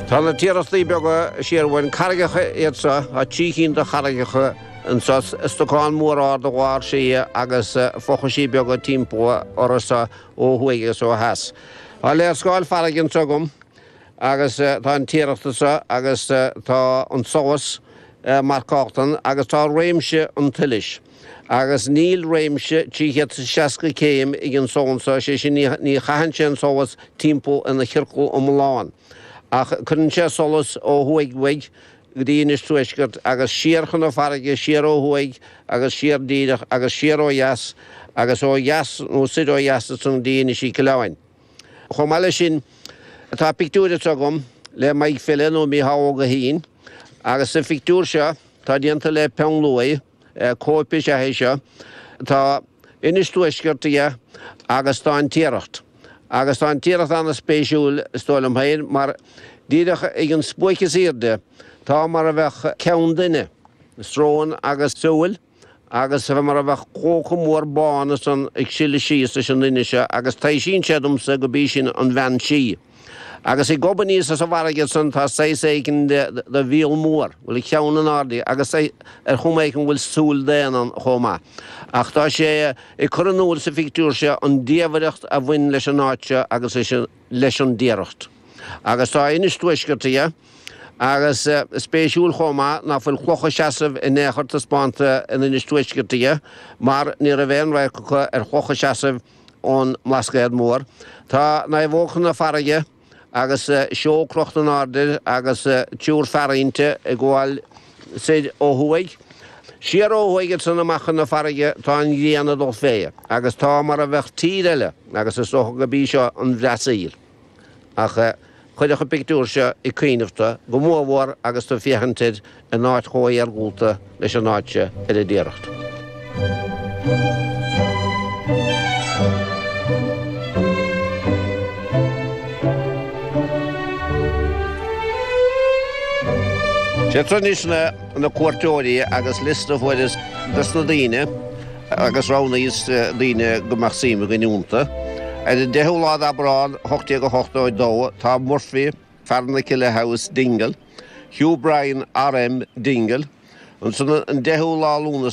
Tá na Tiarachtaí Beaga siar uainn, carraigeacha iad seo, tá trí chinn de charraigeacha anseo, stocán mór ard i lár slí agus fochaisí beaga timpeall orthu seo ó thuaidh agus ó theas. Tá léarscáil farraige anseo agam agus tá an Tiaracht anseo agus tá an solas marcálta ann agus tá réimse an tsolais. Agus níl réimse 360 céim ag an solas so, sé sin ní chaitheann sé an solas timpeall ina chiorcal iomlán, ach cuireann sé solas ó thuaidh uaidh go dtí Inis Tuaiscirt agus siar chun na farraige, siar ó thuaidh agus siar díreach agus siar ó dheas agus ó dheas nó soir ó dheas ansan go dtí Inis Uí Coileáin. Chomh maith le sin, tá pictiúir anso agam le Maidhc File nó Mícheál Ó Gaoithín agus sa phictiúir seo tá déanta le peann luaidhe, Cóip is ea é seo. Tá Inis Tuaiscirt aige agus tá An Tiaracht. Agus tá An Tiaracht an-spéisiúil, is dóigh liom féin, mar díreach ag an spuaic is airde tá mar a bheadh ceann duine, srón agus súil, agus mar a bheadh clóca mór bán san ag sileadh síos leis an duine seo agus taibhsíonn sé domsa gurb í sin an Bhean Sí. Agus ag gobadh aníos as an bhfarraige san tá saghas éigin de mhíol mór, go bhfuil a cheann in airde agus ar chuma éigin go bhfuil súil daonna ann chomh maith. Ach tá sé ag cur in úil sa phictiúr seo an diamhaireacht a bhain leis an áit seo agus leis an dTiaracht. Agus tá Inis Tuaiscirt aige. Agus spéisiúil chomh maith ná fuil clocha seasamh in aon chor taispeánta in Inis Tuaiscirt aige, mar ní raibh aon radharc acu ar chlocha seasamh, ón mBlascaod Mór. Tá naomhóg chun na farraige agus seol crochta in airde agus triúr fear inti ag gabháil soir ó thuaidh. Siar ó thuaidh ansan amach chun na farraige tá an ghrian ag dul fé agus tá mar a bheadh tír eile agus is dócha gurb í seo an Bhreasaíl. Ach chuirfeadh an pictiúr seo ag cuimhneamh tú, go mór mór agus tú ag féachaint air in áit chomh hiargúlta leis an áit seo ar an dTiaracht. Sé tráchtas na cuairteoirí agus liosta a fuaireas des na daoine, agus roghnaíos daoine go mbeadh suim againn iontu. Ar an 10ú lá d'Abrán, 1882, tá Murphy, Farranakilla House, Dingle, Hugh Bryan, R.M. Dingle, ansin an 10ú lá Lúnasa,